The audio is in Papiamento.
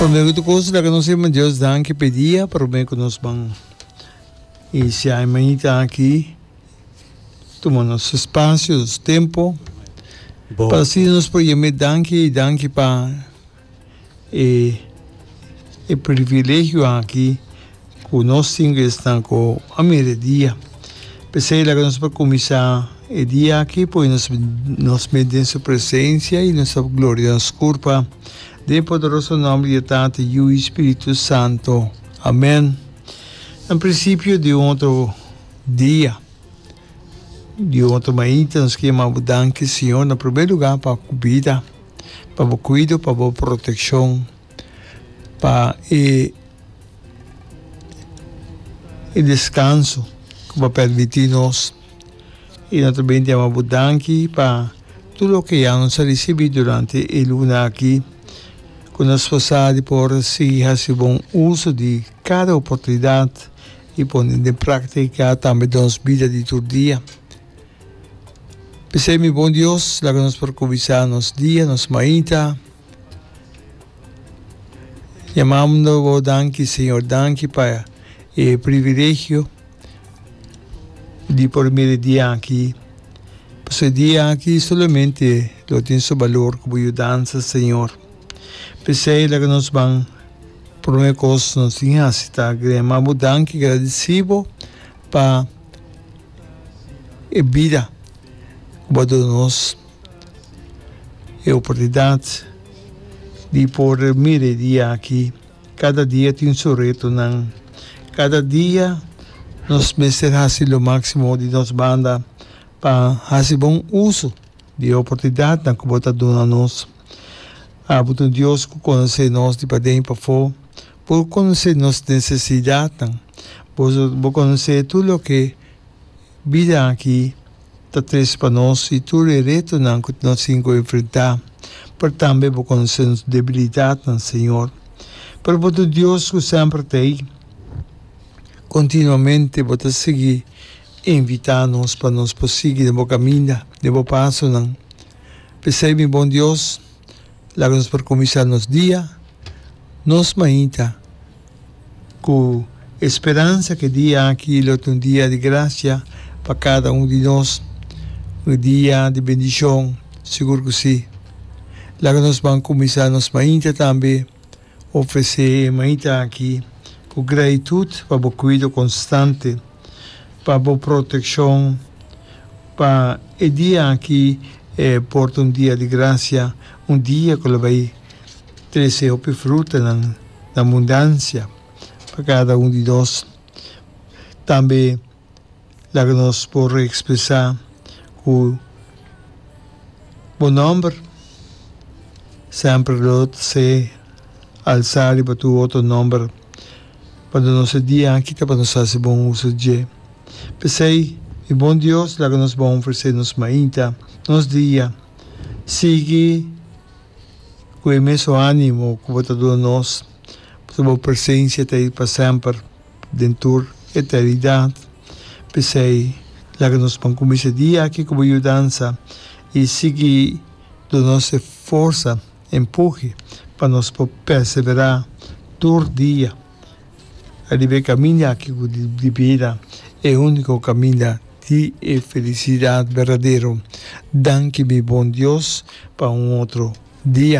Prome ku tur kos laga nos Yehova Dios danki pe dia prome ku nos ban. I si ai mañita aki tuma nos spasio, nos tempo pa si nos por yam'é danki i danki pa e privilegio aki. Ku nos tin ku esnan ku a mira e dia. P'esei laga nos por kuminsá e dia aki pone nos nos mes den su presensia i nos ta gloria nos kurpa. Den e poderoso nòmber di e Tata, Yu i Spiritu Santu. Amèn. Na prinsipio di un otro dia, di un otro mainta, nos kier yama bo danki, Señor, na primer lugá pa bo bida, pa bo kuido, pa bo protekshon. pa e e descanso cu bo permiti nos y no ta ben di amo bo danki pa tur loke ya nos a ricibi durante e luna aki cu nos sfosa di por sigui haci bon uso di cada oportunidad y pone den practica tambe den nos bida di tur dia p'esei mi bon Dios laga nos por cubisa nos dia nos maita. Yamando bo danki Señor, danki pa e privilegio di por mira e dia aki. Pasobra e dia aki solamente lo tin su balor ku bo yu dansa, Señor. P'esei laga nos ban promé kos nos tin hasi ta grema bo danki, gradisí bo pa e bida ku bo a duna nos. E oportunidat di por mira e dia aki, kada dia tin su retonan. Kada dia nos mester hasi lo máksimo di nos banda pa hasi bon uso di e oportunidatnan ku bo ta duna nos. Abo ta un Dios ku konosé nos di paden i pafó. Bo konosé nos nesesidatnan. Bo konosé tur loke. Bida aki ta tres pa nos i tur e retonan ku nos tin ku enfrentá, pero tambe bo konosé nos debilidatnan, Señor. Pero bo ta Dios ku semper ta ei. Kontinuamente bo ta sigui invitá nos pa nos por sigui den bo kaminda, den bo pasonan. P'esei, mi bon Dios, Laga nos por kuminsá nos dia nos mainta ku e speransa ku e dia aki lo ta un dia di grasia pa kada un di nos, un dia di bendishon, sigur ku si. Laga nos ban kuminsá nos mainta tambe Ofresé e maita aki ku gratitut pa bo kuido konstante, pa bo protekshon, pa e dia aki e por ta un dia di grasia, un dia ku lo bai trese hopi frutanan na bundansia pa kada un di nos. Tambe. laga nos por reekspresá ku bo nòmber semper lo ta ser alsá riba tur otro nòmber, pa duna nos e dia aki ta pa nos hasi bon uso dje. P'esei, mi bon Dios, laga nos bon ofresé nos mainta, nos dia, sigui ku e mesun ánimo ku bo ta duna nos, pasobra bo presensia ta ei pa semper. den tur eternidat. P'esei, laga nos por kuminsá e dia aki ku bo yudansa i sigui duna nos e forsa, e empuhe pa nos por perseverá tur dia ariba e kaminda aki ku di bida e úniko kaminda di e felisidat berdadero. Danki mi bon Dios pa un otro dia.